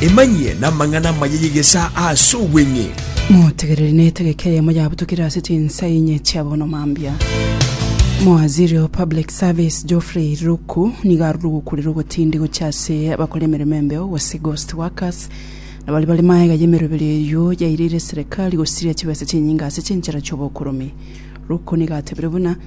Emanyie namang'ana amaya y'egesaa ase obweng'e. Motegereri na etegeka eyemo yabutukire ase chinsa inye chia bono mambia. Mowaziri o Public Service Geoffrey Ruku nigo arure gokurera ogotindi gochia ase abakora emeremo embeo gose ghost workers na baria bare maega y'emeroberi eyio yaireire serikali gosiria chibesa chinyinga ase chinchera chi'obokoromi. Ruku nigo atebire buna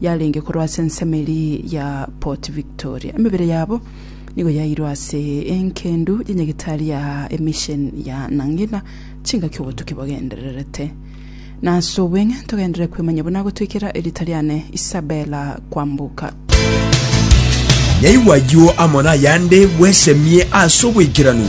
yarenge korwa ase ensemo eria ya Port Victoria. Emebere yabo nigo yairwe ase engendu ya Nyagetari ya emission ya Nangina chingaki obotuki bogendererete. Na ase obweng'e togenderere kwemanya buna agotwekera erita riane Isabella Kwambuka. Naigwa ayio amo nayande bwesemie ase obwekeranu.